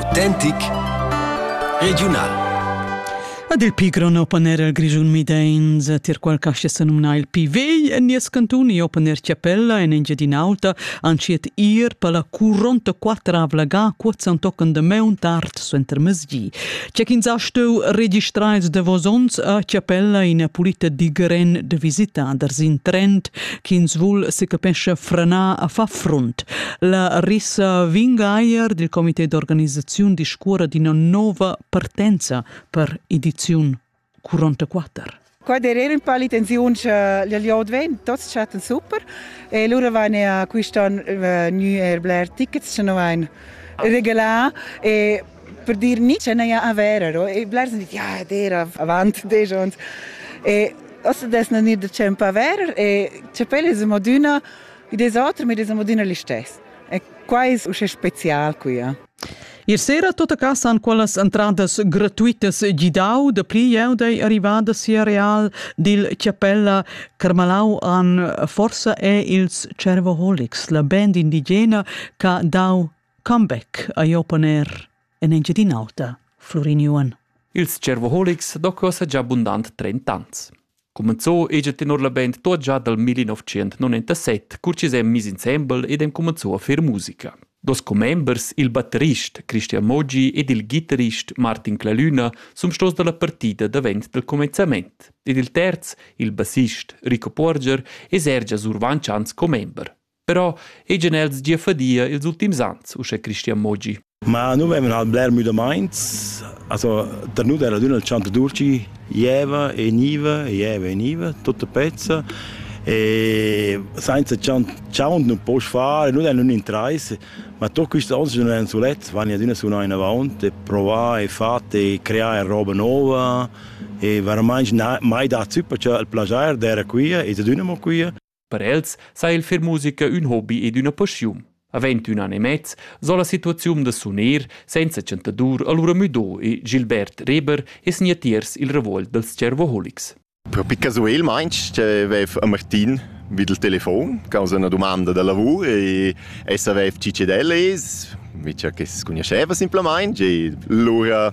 Autentic regiunal. Ad il pi grond open air el Grischun Midains, tier qual castia se numna il pi vegl en nies cantun e open air Chiapella en Engiadin'Alta, anciet ir per la curonta quattravla ga cuozan tochen de meun tard suenter mesgi. C'è ch'ins ha steu registraiz de vos onns a Chiapella in a pulita digren de visitader sin Trent ch'ins vul secapescha frenar a far frunt. La Rissa Vingaier dil comité d'organisaziun discurra d'ina nova partenza per ediziun 44. Qua derera un po' l'intenzione che gli liot vegn, tutti chatten super e allora van a quest'anno uh, new air Blair tickets, che non van regalà e per dir ni che n'haja avero e blers han dit ja era avant disch ons e ossa des na nir da temp aver e chapel es modüna e des oter mit es modüna l'istes e quai es usche spezial quia Ier sera tota casa han quellas entradas gratuitas gidau da pli jeu dei arrivada sia real dil chapella Carmalau an forsa è ils Cervoholics la band indigena ca dau Comeback ei opponer en Engiadin'Auta, Flurin Juan. Ils cervoholics docos già bundant 30 ans. Cumenzò egl tenor la band tot già dal 1997, cur chi s'han mis insembel ed han cumenzò a fer musica. Dos commembers, il batterist Christian Moggi ed il ghitarrist Martin Clalüna, sun stos dalla partida davent dal comenzament. Ed il terz, il bassist Rico Porger, es er già survantschà als commember. Però ejan els gia fadia ils ultims ans, uschè Christian Mogi. Ma nu vaivan halt bler müdamaints, also da nu era adüna il chant Durci jeva e gniva, jeva e gniva, tutta pezza e senza chant chaunt nun poss far, nu dain un'intrais, ma tot quist ans nun èn sulets, vagn adüna sunà inavant e provà e fat e creà roba nova e veramaing mai datsü perciò il plajair d'era quia e d'adüna mo quia. Per els sa il fer musica ün hobi ed üna paschiun. Avend ün an e mez, so la situaziun da suner senza chantadur allura müdo e Gilbert Reber e sgnatiers il revolt dels cervoholics. Per Picazuel meinst avev a Martin vid il telefon causa una domanda da lavur e essa avev cicedel es, vicia che si conosceva simplamain e lura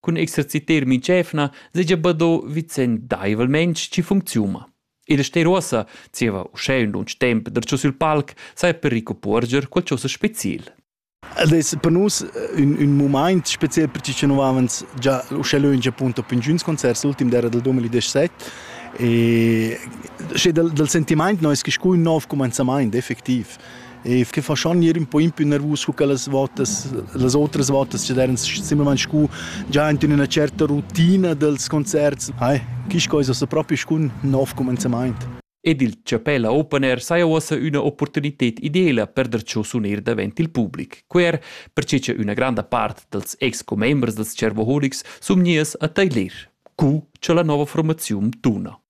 Cun exerciter migevna seigi bado vicendeivelmein schi funcziuma. Il ster uossa zieva uschè ün lunsch temp darcho sül palc sai per Rico Puorger qualchosa speciel. Ed es per nus ün, ün mumaint speziel perché che nu havens già uschè lönch appunto per inchüns concerts, l'ultim d'era del 2017 e sche dal, dal sentimaint no es que scu ün nov cumenzamaint effektiv. E che faschan gnir ün po impi nervus cu che las votas, las otras votas chi deran simplamaing scu già in üna certa rutina dels concerts. Hai, quist coisa s'ha propi scun nov cumenzamaint. Ed il Chapella Open Air saja uossa üna opportunited ideela per der cho suner davent il public. Quer perche cha üna granda part dals ex-commembers dels Cervoholics sun gnieus a tailer, cu cha la nova formaziun tuna.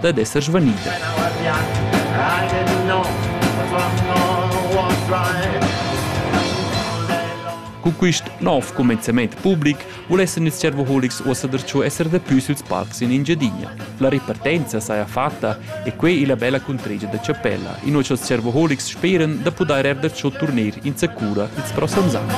dad esser svanida. Cun quist nov cumenzament public vulessan ils servoholics uossa darcho esser dapü süls parcs in Engiadina. La ripartenza saja fatta e quei illa bella cuntregia da Chapella, inua cha'ls servoholics speran da pudair eir darcho turner insacura ils prossems ans.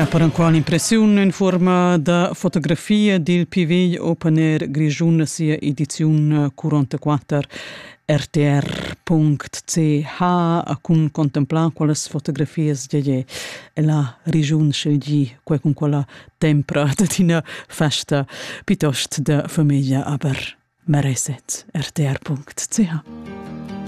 Per enqual impressiun en fuorma da fotografia dil PV Open Air Grischun sia ediziun 44 rtr.ch cun contemplar quelles fotografias gege la regiun scelgi quei cun quella tempra da tina festa piuttost de famiglia aber mereset rtr.ch